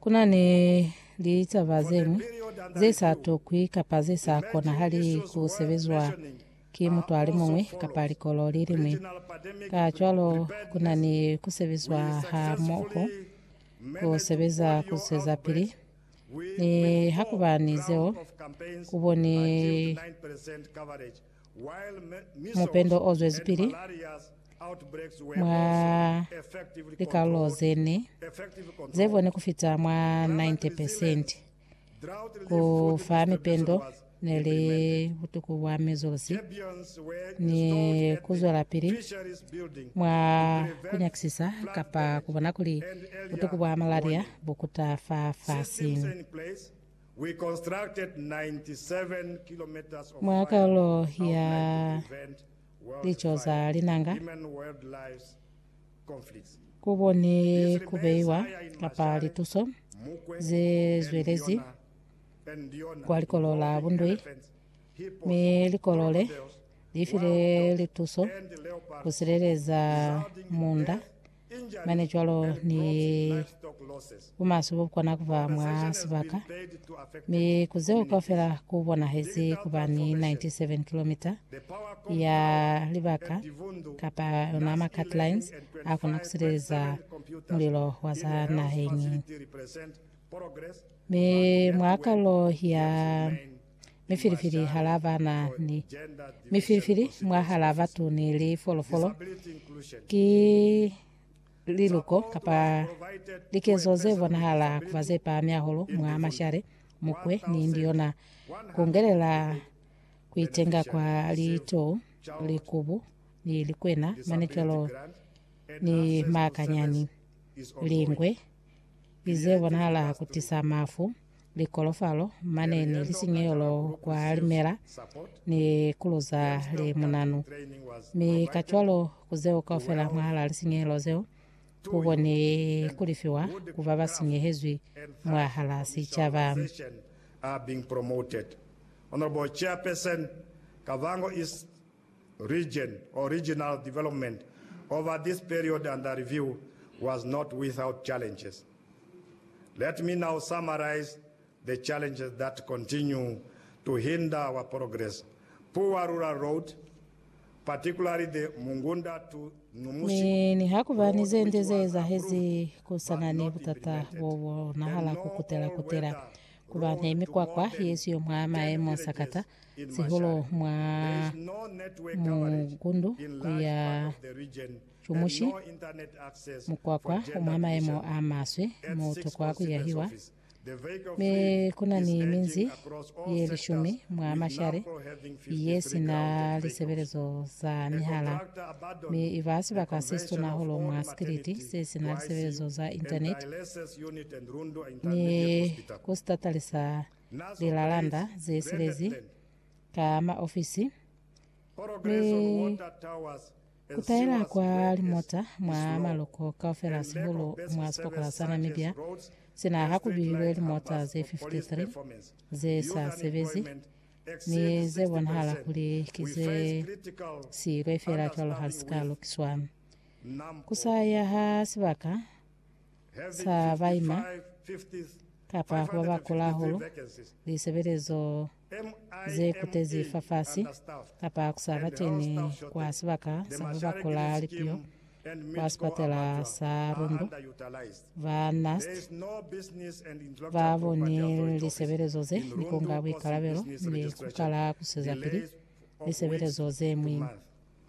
Ku na ni litaba ze ñwi ze sa tokwi kapa ze sa konahali ku sebezwa ki mutu a li muñwi kapa likolo li liñwi. Kacwalo, ku na ni ku sebezwa hamoho ku sebeza ku zwezapili. Nihakuba ni zeo, ku boni Mupendo o zwezipili mwa likalulo ze ne ze bone ku fita mwa 90 percent. Ku fa mipendo ne li butuku bwa mizulusi ni ku zwelapili mwa ku nyakisisa kapa ku bona kuli butuku bwa malaria bu kuta fa fasiñi. Mwa kalulo ya Lico za Linanga, ku koni ku beiwa kapa lituso ze zwelezi kwa likolo la bundui, mi likolo le li file lituso ku sileleza munda mane cwalo ni bumaswe bobukona kuba mwa sibaka, mi ku zeo kaufela kubonahezi kuba ni 97 kilomita ya libaka kapa yona ma cut lines akona kusileleza mulilo wa za naheñi. Mi mwa kalulo ya mifilifili hala bana ni mifilifili mwahala batu ni lifolofolo ki liluko kapa likezo ze bonahala kuba ze pahami hahulu mwa mashale mukwe ni ndiona kungelela kuitenga kwa litou likubu ni likwena manecwalo ni makanyani lingwe ize bonahala kutisa mafu likolofalo mane ni lisinyehelo kwa limela ni kuluza le munanu mi ka cwalo kuzeo kaufela mwahala lisinyehelo zeo kukoni kulifiwa ku ba ba sinyehezwi mwahala sicaba. are being promoted. Honourable Chairperson, Kavango East region or regional development over this period under review was not without challenges. Let me now summarize the challenges that continue to hinder our progress, poor rural road, particularly the Mungunda to Numusi Mi nihakuba ni ze nde ze ezahezi, ku sa na ni butata bo bo bonahala ku kutela-kutela, ku ba ni mikwakwa ye siyo mwa maemo sakata, sihulu mwa mukundu ku ya cumushi mukwakwa mwa maemo a maswe mo tokwa ku yahiwa, mi ku na ni minzi ye lishumi mwa mashale ye si na lisebelezo za mihala, mi i ba sibaka se situna hahulu mwa sikiliti se si na lisebelezo za Intaneti ni ku sitatalisa lilalanda ze silezi ka maofisi, mi ku taela kwa limota mwa maloko kaufela sihulu mwa sipokola sa Namibia sina ha ku bihilwe limota ze 53 ze sa sebezi mi ze bonahala kuli ki ze siilwe fela cwalo ha si ka lukiswa. Ku sa ya ha sibaka sa baima kapa ku baba kula hahulu, lisebelezo ze kutezi fafasi, kapa ku sa bateni kwa sibaka sa ku baba kula lipiho kwa sipatela sa Rundu. Ba NAST ba boni lisebelezo ze ni kunga buikalabelo ni ku kala kusezapili lisebelezo ze mwiñi.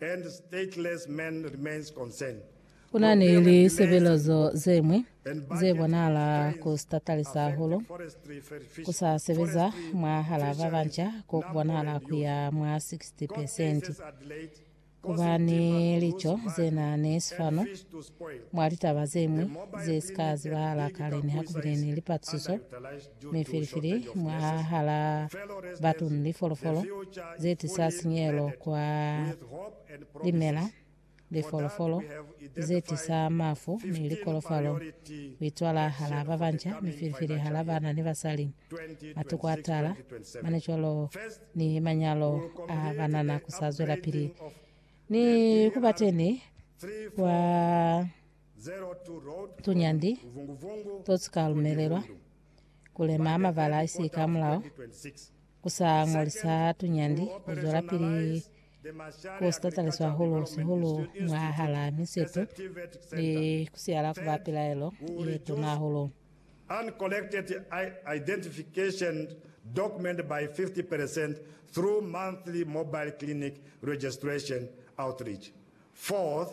and stateless man remains concern. Ku na ni lisebelezo ze ñwi ze bonahala ku sitatali sa hulu, ku sa sebeza mwahal'a ba banca ko ku bonahala ku ya mwa 60 pesenti. Ku ba ni lico ze na ni sifanu mwa litaba ze ñwi ze si ka zibahala kale nihaku bile ni lipatusiso. Mi filifili mwahala batu ni lifolofolo zetisa sinyehelo kwa limela, lifolofolo zetisa mafu ni likolofalo, kuitwala hala babanca mi filifili hala bana ni basali, matuku atala, mane cwalo ni manyalo a banana kusazwelapili ni kubateni kwa Tunyandi to sika lumelelwa ku lema ha mabala a isika hamulaho ku sa ñolisa tunyandi ku zwelapili ku si tatalisa hahulu, sihulu mwahalaa misitu ni ku siyala ku ba pilaelo ye tuna hahulu. uncollected identification document by 50 per cent through monthly mobile clinic registration outreach. Fourth,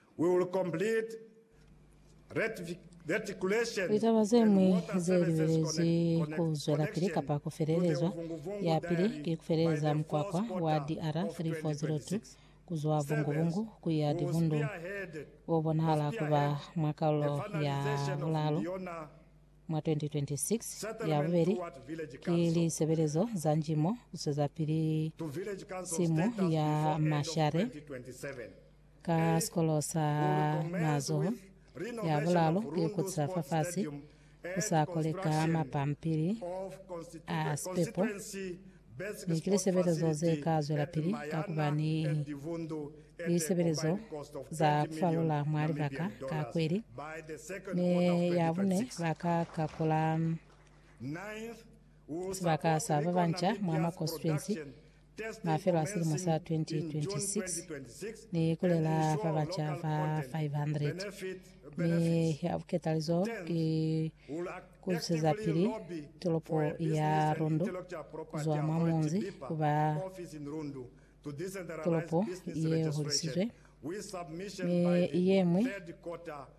We will complete reticulation Litaba ze and ñwi water ze services libelezwi ku zwelapili connection kapa ku to the felelezwa. Vungu-Vungu Ya pili Dam ki ku by feleleza the mukwakwa fourth wa quarter of DRR 3402 2026. ku zwa Service Vungu-Vungu ku ya will Divundu, spearhead wo bonahala ku ba spearhead mwa the kaulo ya finalization of bulalu Mbiona mwa 2026. Ya settlement bubeli toward village ki council lisebelezo za njimo ku swezapili to village council simo status ya before end of mashare. 2027. Ka sikolo sa mazoho, ya bulalu ki ku tisa fafasi ku sa kole ka mapampili a sipepo, mi ki lisebelezo ze ka zwelapili ka ku ba ni lisebelezo za ku falula mwa libaka ka kweli, mi ya bune ba ka kakula sibaka sa ba banca mwa ma konsituensi mafelo a silimo sa 2026 ni kulela fa baca ba 500 mi ya buketalizo ki kuzusezapili tolopo ya Rundu kuzwa mwa munzi kuba tolopo ye holisizwe mi yeñwi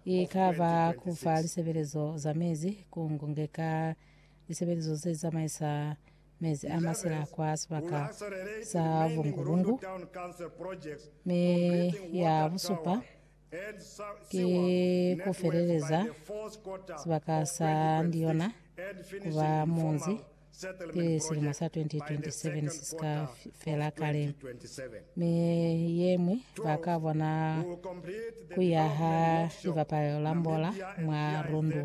ikaba kufa lisebelezo za mezi ku ngunge ka lisebelezo ze zamaisa mezi a masila kwa sibaka sa bungu-bungu, mi ya busupa ki ku feleleza sibaka sa Ndiyona ku ba munzi pili silimo sa 2027 si si ka fela kale, mi ye ñwi ba ka bona ku yaha libapalelo la mbola mwa Rundu.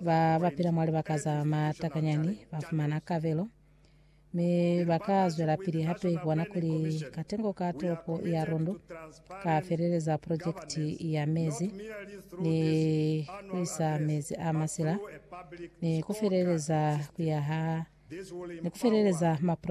Ba ba pila mwa libaka za matakanyani ba fumana kabelo, mi ba ka zwelapili hape ku bona kuli katengo ka tolopo ya Rondo ka feleleza projekiti ya mezi ni ku isa mezi a masila ni ku feleleza ku yaha ni ku feleleza maprojekiti